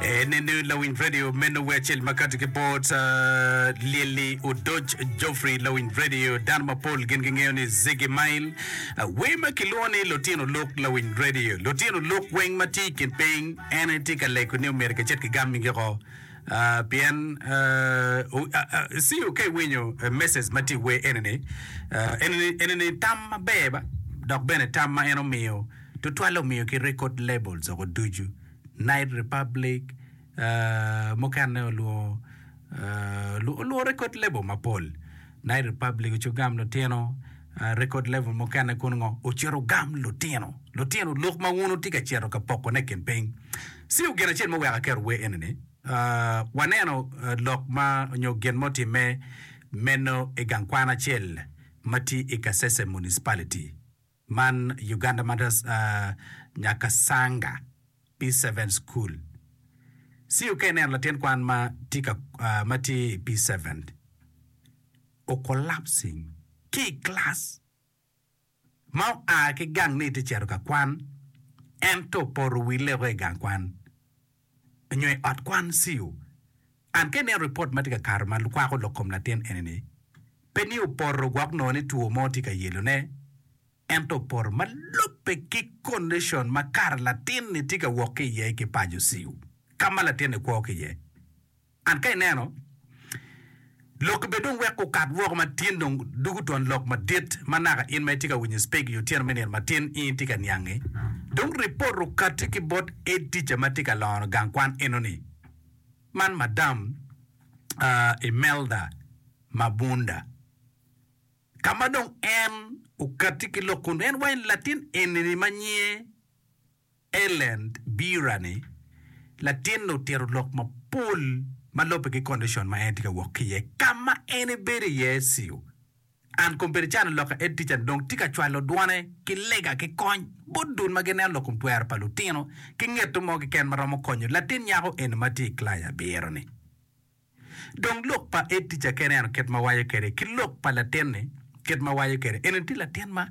Eni ni lawiny radio meno wiye acel ma kati ki bot uh, Lyelly Odoc Geoffrey lawiny radio dano mapol gin gingeyo ni Ziggy Mail uh, wer ma kilwongo ni lutino luk lawiny radio lutino luk weng ma tye i kin piny en aye tye ka lego ni omyero kicit kigammigi ko Uh, pien uh, u- uh, uh, siyo ka iwinyo uh, message ma tye i wer eni ni uh, eni ni- eni ni tam maber ba dok bene tam ma en omiyo tutwalle omiyo ki record labels oko ducu Night Republic, mukene olwongo olwongo record label mapol. Night Republic ocito gam lutino, record label mukene kono ngo ocito gam lutino. Lutino lok ma wun wutye ka cito ka pokone i kin piny. Siu gin acel ma weko aketo wer enini, waneno lok ma onyo gin ma otimme meno i gang kwan acel ma tye i Kasese Municipality. Man Uganda Mothers Nyakasanga P7 School. CUK neno latin kwan ma tye ka ma tye i P7 o collapsing ki i class ma oa ki gang ni tye cito ka kwan ento opoto wi leko i gang kwan nyo i ot kwan CU. An ka ineno ripot ma tye ka kato ma kwako lok kom latin eni-ni, pe ni opoto gwok nongo ni two mo tye ka yelone, ento opoto ma lubbe ki kondicon ma kare latin-ni tye ka wok ki iye ki paco CU, ka ma latin-ni kwo ki iye. An ka ineno, lokki bed dong wek okat woko matin dong dugu twon lok madit ma naka in ma itye ka winyo cpeg i otyeno me nino matin in itye ka niange. Dong ripot okati ki bot Ed Tica ma tye ka longo gang kwan enoni. Man Madam Imelda Mabunda. Ka ma dong en okati ki lok kun en waco ni latin enini ma nyinge. Ellen Birani, latinne otito lok mapol ma lubbe ki kondicon ma en tye ka wok ki iye. Ka ma en ebedo iye CU, Ann Kombedi cano lok ka edtica-ni dong tye ka cwalo dwone ki lega ki kony bot dul ma gineno lok twero pa lutino ki ngeto mo keken ma romo konyo latin nyako eni ma tye i kilaci abiro-ni. Dong lok pa Edija kene ento kit ma waco kwede ki lok pa latinni kit ma waco kwede eni tye latin ma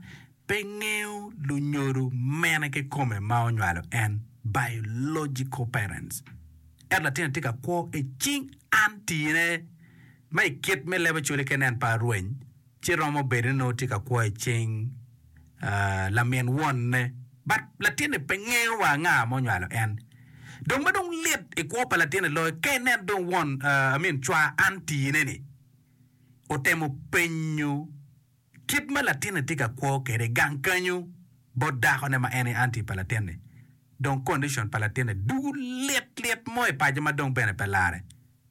pe ngeyo lunyodo mene kikome ma onywalo en, biological parents. Ento latinni tye ka kwo icing an tine ma ikit me leb ocole kene en pe arweny Ci romo bedo ni nongo tye ka kwo i cing lamin wonne, but latinni pe ngeyo wa nga ma onywalo en. Dong ma dong lit i kwo pa latinni loyo ka ineno dong won, I mean cwa auntie ne ni otemo penyo kit ma latinni tye ka kwo kwede i gang kenyo bot dako ne ma en aye auntie pa latinni. Dong condition pa latinni dugu lit lit mo i paco ma dong bene pe lare.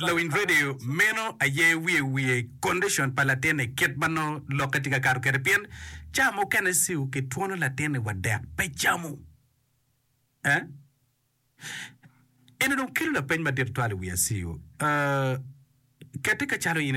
Lawiny redio meno aye wiye wiye kondicon pa latinni kit ma nongo lokke tye ka kato kwede pien ca mukene ciu kitwono latinni wa dek pe camo. Eno dong kelo lapeny madit twal i wi aciu. Kette ka calo in itimo.